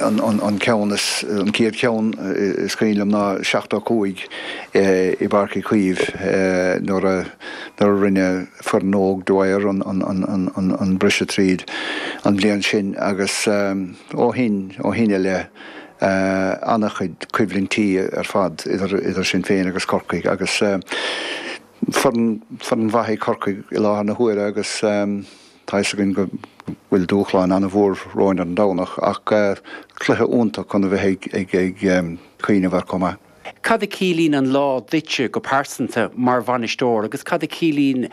An ceann is, an céad ceann is cuimhin liom ná seachtó cúig i bPáirc Uí Chaoimh nuair a, nuair a rinne foireann óg Dwyer an briseadh tríd an bhliain sin agus ó shin, ó shin i leith ana chuid coimhlintí ar fad idir, idir sinn féin agus Corcaigh agus foireann, foireann mhaith í Corcaigh i láthair na huaire agus. Tá fhios againn go bhfuil dúshlán ana mhór romhainn ar an Domhnach ach cluiche iontach chun a bheith ag cuimhneamh air chomh maith. Cad a ciallaíonn an lá duitse go pearsanta mar bhainisteoir agus cad a ciallaíonn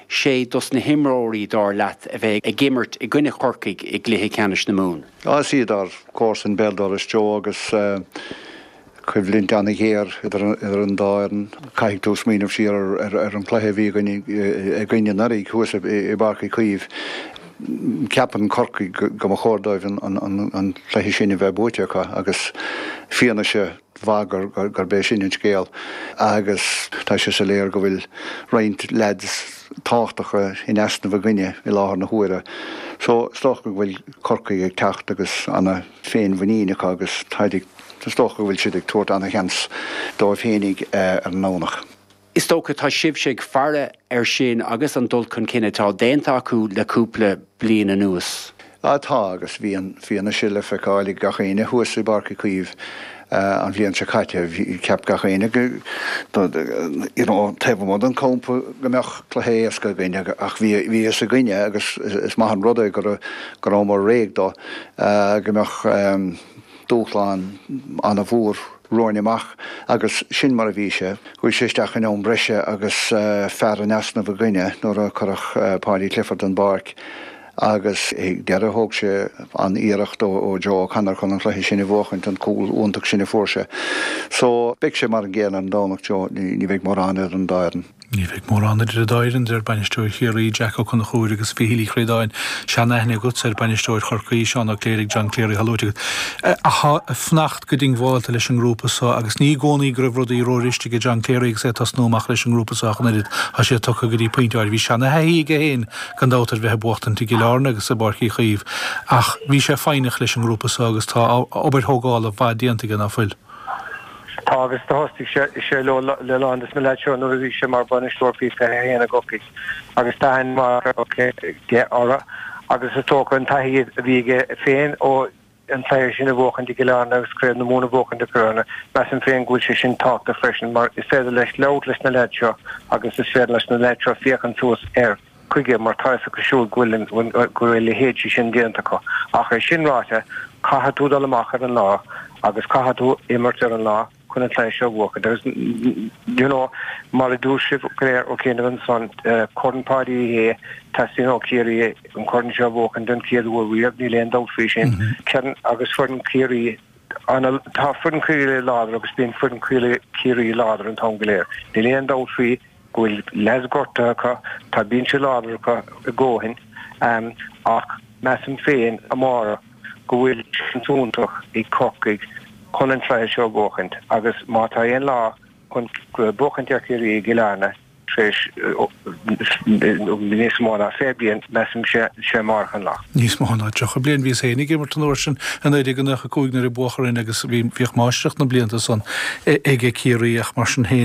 sé dos na himreoirí dar leat a bheidh ag imirt i gcoinne Chorcaigh i gcluiche ceannais na Mumhan? Is iad ár gcomharsain béal dorais, Joe, agus coimhlint an-ghéar idir an dá fhoireann. Caithfidh tú smaoineamh siar ar an cluiche a bhí againn anuraidh thuas i bPáirc Uí Chaoimh. Ceapann Corcaigh go mba chóir dóibh an cluiche sin a bheith buaite acu agus fianaise mhaith gurb é sin an scéal agus tá sé soiléar go bhfuil roinnt leaids tábhachtacha in easnamh againne i láthair na huaire. So is dócha go bhfuil Corcaigh ag teacht agus ana, féinmhuinín acu agus táid ag, is dócha go bhfuil siad ag tabhairt ana-sheans dóibh féinig ar an nDomhnach. Is dócha tá sibhse ag faire air sin agus an dul chun cinn atá déanta acu le cúpla bliain anuas. Tá agus bhí an fhianaise le feiceáil ag gach éinne thuas i bPáirc Uí Chaoimh. An bhliain seo caite cheap gach éinne taobh amuigh den campa go mbeadh cluiche éasca againn ach bhí a fhios againn agus is maith an rud é go rabhamar réidh dó go mbeadh dúshlán ana mhór romhainn amach agus sin mar a bhí sé. Chuaigh sé isteach in am breise agus fear in easnamh againn nuair a cuireadh Paudie Clifford den bpáirc. agus ag deireadh thóg sé an-iarracht ó Joe O'Connor chun an cluiche sin a bhuachaint, an cúl iontach sin a fuair sé. So, beidh sé mar an gcéanna an Domhnach, Joe, ní bheidh mórán idir an dá fhoireann. Ní bheidh mórán idir an dá fhoireann, deir bainisteoir Chiarraí, Jack Ó Conchúir agus a Mhichíl Uí Chríodáin. Sean-aithne agatsa ar bhainisteoir Chorcaí, Seán Ó Cléirigh, John Cleary, atá luaite agat. Atá ag fanacht go diongbhálta leis an ngrúpa so agus ní i gcónaí go raibh rudaí ró-fhuirist aige John Cleary agus é ag tosnú amach leis an ngrúpa so ach an oiread. Tá sé tugtha go dtí pointe áirid. Bhí seana-thaithí aige féin Gan dabht ar bheith ag buachtaint i gCill Airne agus i bPáirc Uí Chaoimh ach bhí sé foighneach leis an ngrúpa so agus tá obair thógála mhaith déanta aige ná fuil? Tá agus thosaigh sé le, le a lán de na leaids seo nuair a bhí sé mar bhainisteoir faoi 21 i gCorcaigh agus tá aithne mhaith aige orthu agus is dócha an taithí a bhí aige féin ó an cluiche sin a bhuachaint i gCill Airne agus Craobh na Mumhan a bhuachaint i gCill Airne. Measaim féin go bhfuil sé sin tábhachtach freisin mar is féidir leis labhairt leis na leaids seo agus is féidir leis na leaids seo féachaint suas air, chuige mar tá fhios acu siúd go bhfuil, go bhfuil a leithéidí sin déanta acu. Ach é sin ráite, caithfidh tú dul amach ar an lá agus caithfidh tú imirt ar an lá. chun an cluiche seo a bhuachan. Agus you know mar a dúirt sibh go léir ó chianaibh ansan, Corn Pháidí Uí Shé, teastaíonn ó Chiarraí an corn seo a bhuachan den chéad uair riamh, níl aon dabht faoi sin. Kieran agus foireann Chiarraí ana, tá foireann Chiarraí láidir agus bíonn foireann Chiarraí láidir an t-am go léir. Níl aon dabht faoi go bhfuil leaids gortaithe acu, tá binse láidir acu i gcónaí, ach measaim féin amárach, go bhfuil seans iontach ag Corcaigh chun an cluiche seo a bhuachaint agus má tá aon lá chun buachaint ar Chiarraí i gCill Airne tar éis níos mó ná 20 bliain, measaim, sé amáireach an lá. Níos mó ná 30 bliain. Bhíos féin ag imirt an uair sin i 1995 nuair a buadh orainn agus bhíodh máistreacht na blianta san ag Ciarraí ach mar sin féin,